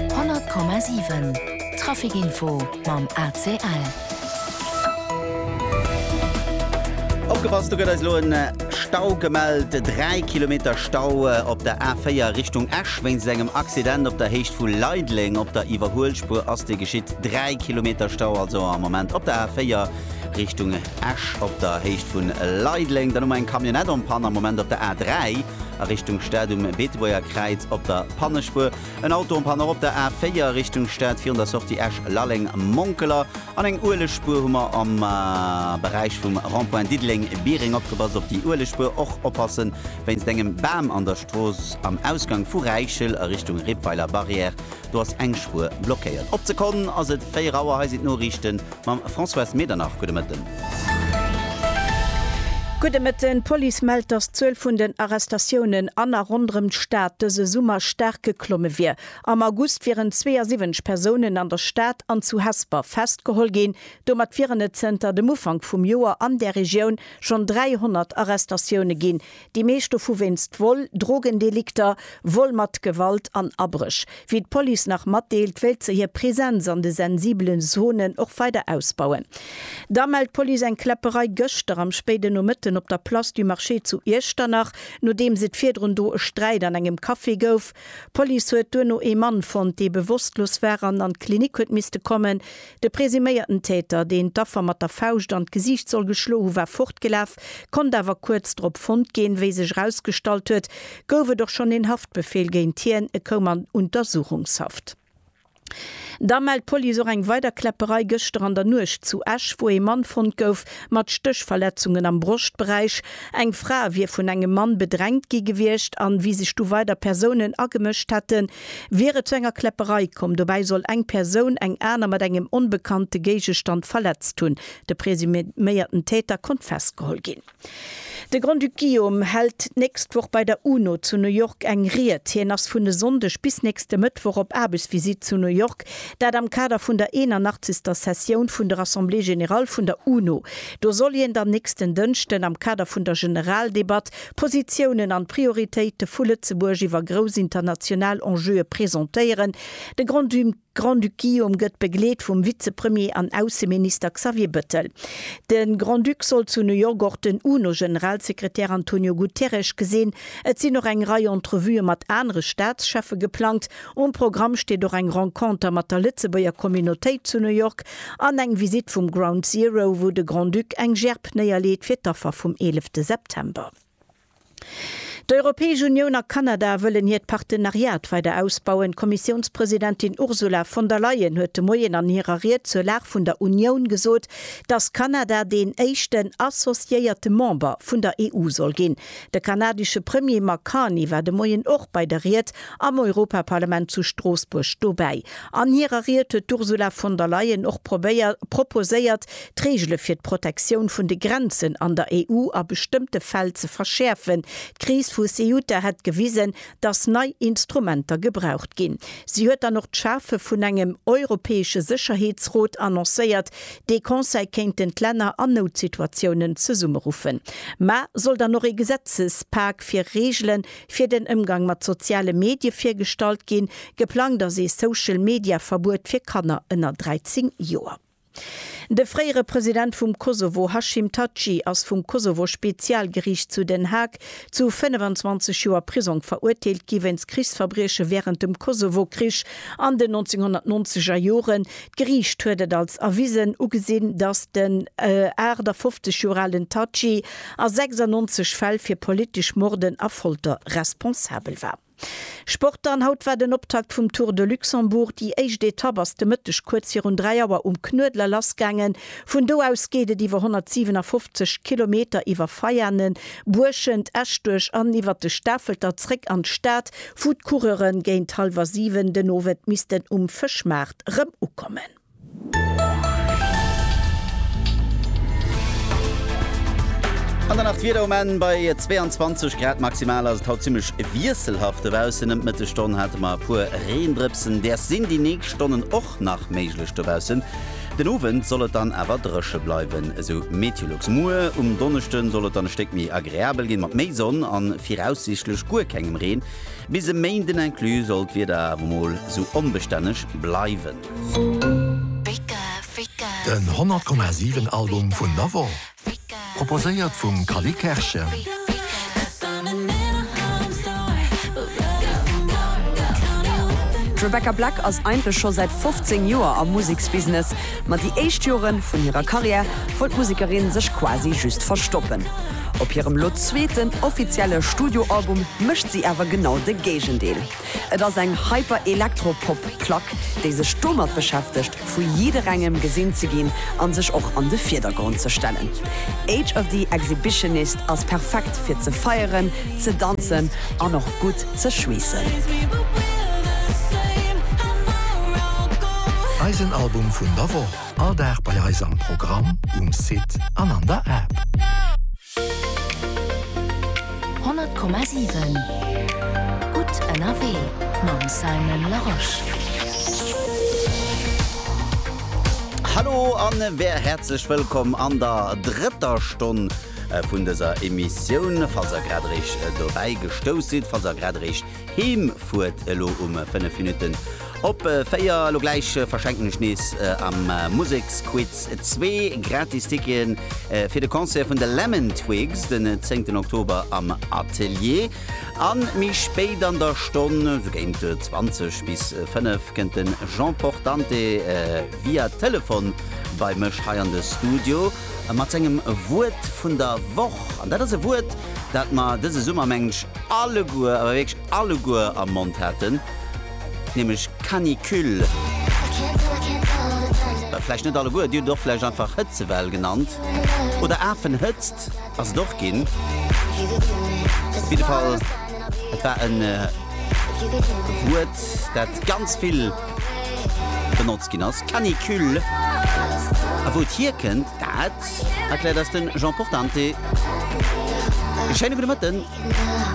100,7 Trafic Info mam ACL. Opgepasst, do gëtt eis elo e Stau gemellt. Dräi Kilometer Stau op der A4 Richtung Esch wéinst engem Accident op der Héicht vu Leideleng. Op der Iwwerhuelspuer ass dee geschitt. Dräi Kilometer Stau also am Moment op der A4 Richtung. Esch op der Héicht vu Leideleng, dann hu mer eng Camionnette en panne am Moment op der A3 a Richtung Stad um Beetebuerger Kräiz op der Pannespuer, en Auto en panne och op der A4 Richtung Stad virun der Sortie Esch-Lalleng-Monkeler an eng Uelegspuer hu mer am Beräich vum Rond-point Diddeleng-Biereng. Opgepasst op déi Uelegspuer, och oppasse wéinst engem Bam an der Strooss am Ausgang vu Räichel a Richtung Rippweiler Barrière, do ass eng Spuer blockéiert. Op d'Sekonn ass et 4 Auer, hei sinn d'Noriichten Mam Françoise Medernach, gudde Mëtten. Gudde Mëtten. D'Police mellt, datt d'Zuel vun den Arrestatiounen an a ronderëm d'Stad dëse Summer staark geklomme wier. Am August wieren 72 Persounen an der Stad an zu Hesper festgeholl ginn. Domat wieren et zënter dem Ufank vum Joer an där Regioun schonn 300 Arrestatioune ginn, Déi meescht dovu wéinst Vol, Drogendelikter, Vol mat Gewalt an Abréch. Wéi d'Police nach matdeelt, wéilt se hir Presenz an de sensibele Zonen och weider ausbauen. Da mellt d'Police eng Kläpperei gëschter am spéiden Nomëtten op der Place du Marché zu Iechternach, nodeems et virdrun do e Sträit an engem Café gouf. D'Police huet duerno ee Mann fonnt, dee bewosstlos war an an d'Klinik huet misste kommen. De presuméierten Täter, deen d'Affer mat der Fauscht an d'Gesiicht soll geschlo hu war fortgelaf, konnt awer kuerz drop fonnt ginn. Wéi sech erausgestallt huet, gouf et och schonn een Haftbefeel géint hien, e koum an Untersuchungshaft. Da mellt d'Police och eng weider Kläpperei gëschter an der Nuecht zu Esch, wou ee Mann fonnt gouf mat Stéchverletzungen am Broschtberäich. Eng Fra wier vun engem Mann bedrängt gi gewiescht an wéi sech du weider Persounen agemëscht hätten, Wier et zu enger Kläpperei komm, dobäi soll eng Persoun eng aner mat engem onbekannte Géigestand verletzt hunn. De presuméierten Täter konnt festgeholl ginn. De Grand-Duc Guillaume hält d'nächst Woch bei der UNO zu New York eng Ried. Hien ass vun e Sonndeg bis nächste Mëttwoch op Aarbechtsvisitt zu New York, dat am Kader vun der 81. Sessioun vun der Assemblée générale vun der UNO. Do soll hien dann nächsten Dënschden am Kader vun der Generaldebatt d'Positiounen an d'Prioritéite vu Lëtzebuerg iwwer grouss international Enjeue presentéieren. De Grand-Duc-Guillaume gëtt begleet vum Vizepremier an Ausseminister Xavier Bëttel. De Grand-Duc soll zu New York och den UNO-Generalsekretär Antonio Guterres gesinn. Et sinn och eng Rei Entrevuë mat anere Staatscheffe geplangt. Um Programm steet och eng Renconter mat der Lëtzebuerger Communautéit zu New York an eng Visitt vum Ground Zero, wou de Grand-Duc eng Gerb néierleet fir d'Affer vum 11 September. D'Europäesch Unioun a Kanada wëllen hiert Partenariat weider ausbauen. D'Kommissiounspresidentin Ursula von der Leyen huet de Moien an hirer Ried zur Lag vun der Unioun gesot, datt Kanada deen éischten associéierte Member vun der EU soll ginn. De kanadesche Premier Mark Carney war de Moien och bei der Ried am Europaparlament zu Stroossbuerg dobäi. An hirer Ried huet d'Ursula von der Leyen och probéiert proposéiert, d'Reegele fir d'Protektioun vun de Grenzen an der EU a bestëmmte Fäll ze verschäerfen. D'Kris vu Ceuta hätt gewisen, dass nei Instrumenter gebraucht ginn. Si huet dann och d'Schafe vun engem europäesche Sécherheetsrot annoncéiert, dee Conseil kéinten d'Länner an Noutsituatiounen zesummeruffen. Mä soll dann och ee Gesetzespak fir Reegele fir den Ëmgang mat soziale Medie virgestallt ginn? Geplangt ass ee Social-Media-Verbuet fir Kanner ënner 13 Joer. De fréiere President vum Kosovo Hashim Thaçi ass vum Kosovo-Spezialgeriicht zu Den Haag zu 25 Joer Prisong verurteelt gi wéinst Krichsverbrieche wärend dem Kosovo-Krich an den 1990er Joren. D'Geriicht huet et als erwisen ugesinn, datt den 58 Joer alen Thaçi a 96 Fäll fir politesch Morden a Folter responsabel war. Sport dann, Haut war den Optakt vum Tour de Luxembourg. Déi éischt Etapp ass de Mëtteg kuerz virun 3 Auer um Knuedler lassgaangen. Vun do aus geet et iwwer 157 Kilometer iwwer Veianen, Buerschent, Eschduerch an iwwer de Stafelter zréck an d'Stad, wou d'Coureure géint hallwer 7 den Owend missten um Fëschmaart rëm ukommen. An dann nach d'Wieder um Enn, Bei 22 Grad maximal ass et haut zimmlech wiesselhaft dobaussen. Ëm d'Mëttesstonn hate mer e puer Reendrëpsen, däers sinn déi nächst Stonnen och nach méiglech dobaussen. Den Owend soll et dann awer dréche bleiwen, esou Meteolux. Muer um Donneschde soll et dann e Stéck méi agreabel ginn, mat méi Sonn a viraussiichtlech guer kengem Reen. Bis e Méinden inclus soll d'Wieder awer mol esou onbestänneg bleiwen. Den 100 Komma 7 Album vun Navon, proposéiert vum Cally Kerschen. D'Rebecca Black ass eigentlech scho säit 15 Joer am Museksbusiness, ma déi éischt Jore vun hirer Karriär wollt d'Musekerin sech quasi just verstoppen. Op hirem lo zweeten offizielle Studioalbum mécht si awer genau de Géigendeel. Et ass eng Hyper-Elektro-Pop-Plack, déi sech domat beschäftegt, vu jidderengem gesinn ze ginn an sech och an de Virdergrond ze stellen. Age of the Exhibitionist ass perfekt fir ze feieren, ze danzen an och gutt ze schweessen. Eisen Album vun der Woch, all Dag bei eis am Programm, um Site an an der App. 100,7 Gutt ënnerwee mam Simon Larosche. Hallo an wér häerzlech wëllkomm an der drëtter Stonn vun dëser Emissioun. Falls der grad eréischt dobäi gestouss sidd, falls der grad eréischt Heem fuert elo um 5 Minutten op 4. Elo gläich verschenken ech nees am Museksquiz zwee gratis Ticketen fir de Concert vun de Lemon Twigs den 10 Oktober am Atelier. A méi spéit an der Stonn, sou géint 20 bis 5, kënnt de Jean Portante via Telefon bei mech hei an de Studio. mat sengem Wuert vun der Woch. An dat ass e Wuert, dat mer dëse Summer, mengen ech, alleguer, awer wierklech alleguer am Mond haten, nämlech Canicule. Vläicht net alleguer, dir hutt et och vläicht einfach Hëtzewell genannt oder Afenhëtzt ass et och ginn. Op jidde Fall, et war e Wuert, dat ganz vill. benotzt ginn ass, Canicule. A wou et hierkënnt, dat erkläert eis de Jean Portante. Schéine gudde Mëtten.